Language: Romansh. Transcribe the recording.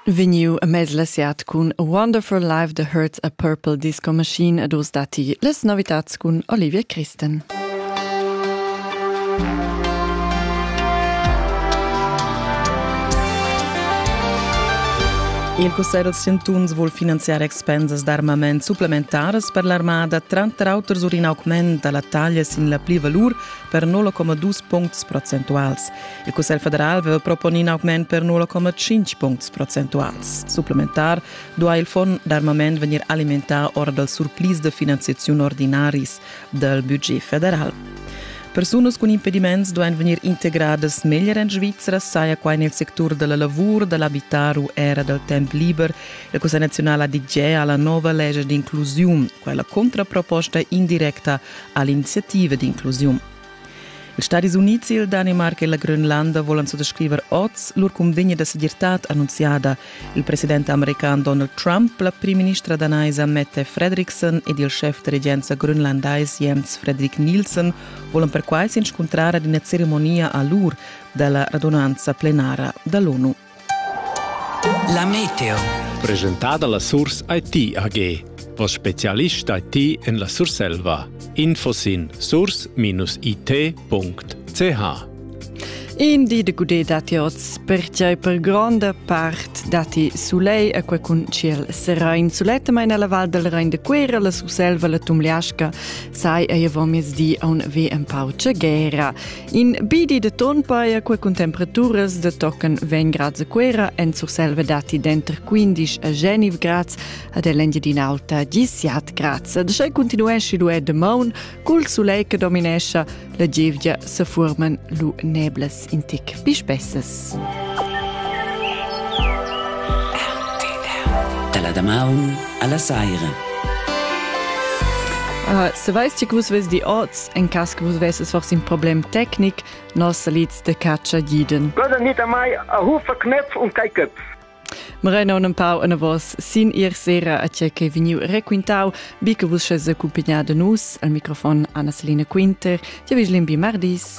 Vegniu a mez la siat cun A Wonderful Life that Hurts a Purple Disco Machine ed oz datti las novitads cun Olivia Christen. Il Cussegl dels Chantuns vul finanziar expensas d'armament supplementaras per l'armada, tranter auter sur in augment da la taglia sin la plivalur per 0,2 puncts procentuals. Il Cussegl federal veva proponì in augment per 0,5 puncts procentuals. Supplementar duai il fond d'armament vegnir alimentà ora dal surplis de finanziaziun ordinaris dal budget federal. Persunas cun impediments duain vegnir integradas meglier en Svizra, saja quai nel sectur della lavur, dell'abitar u era dal temp liber. La Cussegl nazionala DG ha la nova legge d'inclusiun, quella contraproposta indirecta all'iniziativa d'inclusiun. Ils Stadis Unids, il Danimarca e la Grönlanda volan suttascriver oz lur cunvegna da segirtad annunziada. Il president american Donald Trump, la primministra danaisa Mette Fredriksson ed il schef da regenza grönlandais Jens Fredrik Nielsen volan perquai s'inscuntrar ad ina ceremonia a l'ur da la radunanza plenara da l'ONU. La meteo. Presentada la Surs IT AG. Vos specialist IT en la Surselva. Info sin surs-it.ch In di de gude dati oz, pertgei per gronda part dati sulei a quei cun ciel serain. Suletta meina la Val del Rein de Quera, la Surselva, la Tumliasca, sai ei avon miezdi a un v empau guerra. In bi di de ton paia qua cun temperaturas de tochen 20 grads a Cuera en Surselva dati denter 15 a Geniv grads ad Engiadin'Alta 17 grads. Ad sche continuesci lu de maun, cul sulei che dominescha, la gevgia se forman lu neblas in tic bi spessas. Dalla damaun alla saira. Uh, Saveis ti vus ves di oz, en cas che vus vesses forse in problem tecnic, nos salids de caccia giden. Gönnen nicht einmal a Hufe Knöpf und kein Köpf. Moreno un pau en vos sin ir sera a tia che veniu requintau, bi che vus sches accompagnà de nus al microfon Anna Selina Quinter, ti viglim bi mardis.